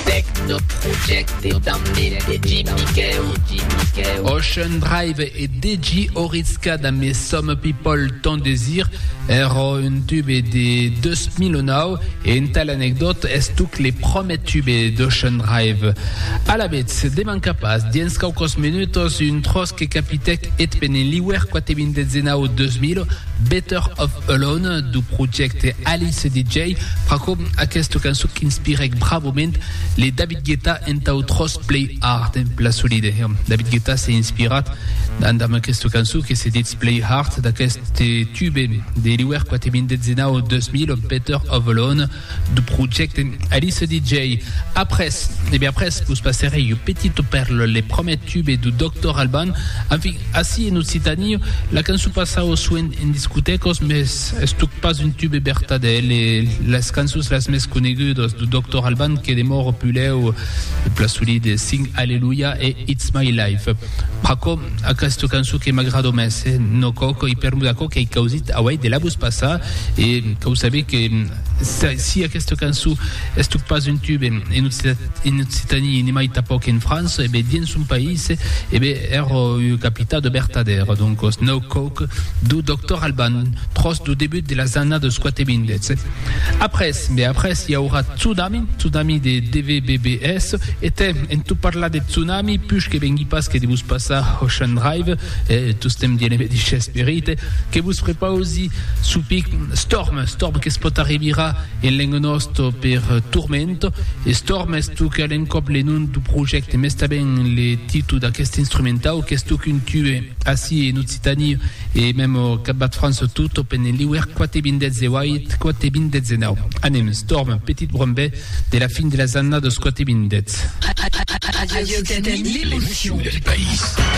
Tech no projècte damb el DJ Miquèu. Ocean Drive e DJ Orizka damb es Some People Ton Desir, èrò un tube de 2009 e entà l'anecdòta es tuc le promèr tube d'Ocean Drive. Alavetz, de mancar pas, diens quauquòs menutòs, un tròç que capitèc eth peneliuèr quate-vintètzenau 2000, Better Off Alone du projècte Alice DJ, pr'aquò aquesta cançon qu'inspirèc bravament le David Guetta entau Tròç Play Hard, la solide. David Guetta s'es inspirat damb aquesta cançon que se ditz Play Hard d'aqueste tube de l'iuèr 4 min 19 2000, Better Off Alone. de projècte Alice DJ après e ben après vos passerei un petit per le promèt tube du Doctor Alban enfin assi en Occitanie la cançon passau soent en discotècos mes estuc pas un tube bertadèl e las cançons las mes conegudos du Doctor Alban que demòro pulèu e pla solide Sing Alleluia e It's My Life. Aquò, aquesta cançon que m'agrado mès, eh? No coc, i per mudar aquò qu'ei causit auei de la vos passar, e que o sabé que si aquesta cançon estuc pas un tube en Occitanie ni mai tapoc en França, e ben dins son país, e ben èra ua capita de vertadèra. Doncos, No coc, dau Doctor Alban, tròç dau debut de las annadas 4 e 20, eh? Après, be après, i aurà tsunami, tsunami de DVBBS, e tem, en tot parlar de tsunami, push que vengui pas que de vos passar Ocean Drive, e tostemp dient eme dish esperit, que vos prepausi sopic Storm, Storm que es pot arribirà en lengo nosto per Turmento, e Storm es toc a l'encòp le nom du projècte, mès tanben le titu d'aqueste instrumentau qu'es toc un tube ací en Occident. Occitani e mem au Cap Bas de France tot au pene l'iuèr quate bindètz e uait quate bindètz e nau. Anem, stòrm, petit brombè de la fin de las annadas quate bindètz. Radio Occitanie, l'émotion du pays.